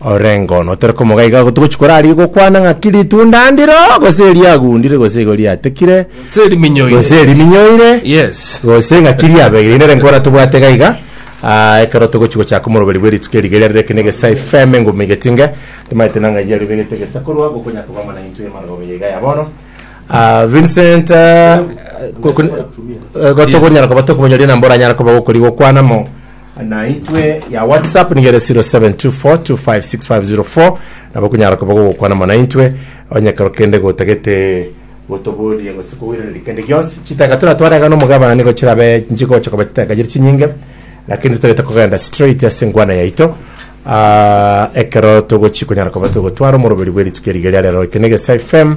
Orengo notore komoga iga igo togochi korarigia gokwana ng'aki ritunda ndiro gose riagundire gose igo riatekire Gose riminyoire. gose riminyoire Yes. gose ng'aki riabeire nere nkora tobwate iga iga Ah, ekero togochi gochaka omoroberi bwe rituko eriga eria rero eke na egesae fm enguma igetinge timaete nang'ai yario begete egesa korwa gokonya kogamba na intwe mara gobe iga ya bono Ah, Vincent ah, ko- ko- eh, gotogonyara koba tokomonyoria nambora anyara koba gokori gokwana mo naitwe ya whatsapp nigere 0724256504 nabo kunyara koba gogokwana mono naintwe onye kero kende gotagete gotoboria gose kogoiraneria kende gionsi chitaka tora twarega nomogabana nigo chirabe nchigocha koba chitaka chiri chinyinge lakini totagete kogenda straight ase engwana yaito Ah, ekero togochi konyara koba togotwara omoroberi bw'erituko erige ria rero eke nege fm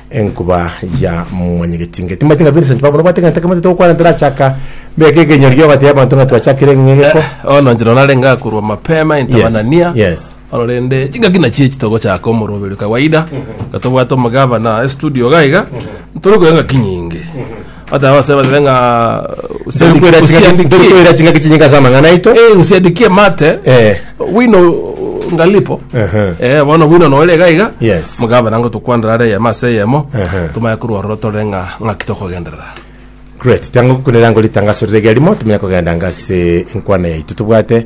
Enkuba ya mwanyegetinge timaite ng'a Vincent babu nobwate egento ekemo titogokwana ntorachaka mbeke ekenyorio ogateba abanto ng'a twachakire ng'a egeko Bono inche no narenge akorwa mapema into Yes, banania yes. bono rende chingaki nachio echi togochaka omoroberio kawaida iga tobwate omogavana estudio iga iga ntore koigwa engaki nyinge Hata wase batebe ng'a Tari koira chingaki- tari usiandikie koira chingaki chinyinga ase amang'ana aito eh, usiandikie mate Eh. wino ngalipo Ehe. eh, bono wino nore iga iga Yes. mugabana ngo tukwandera are eyemo ase eyemo Ehe. tumanye korwa ororo tore ng'a ng'aki tokogenderera great tango kunera ngo ritangaso rire rimo tumenya kogenda ngase enkwana yaito tobwate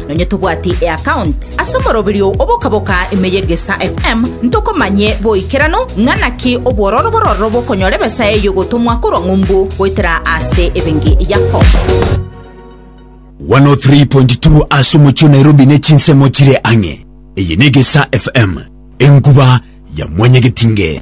Nonye tobwati eaccount ase omoroberio obokaboka ime ye Gesa FM, ntokomanye boikeranu ng'a naki obwororo bororo bokonyora ebesa eyio gotomwa korwa ng'umbu goetera ase ebenki yako. 103.2 ase omochie o Nairobi ne chinsemo chire ang'e. Eye ne Gesa FM, enkuba ya mwanyagetinge.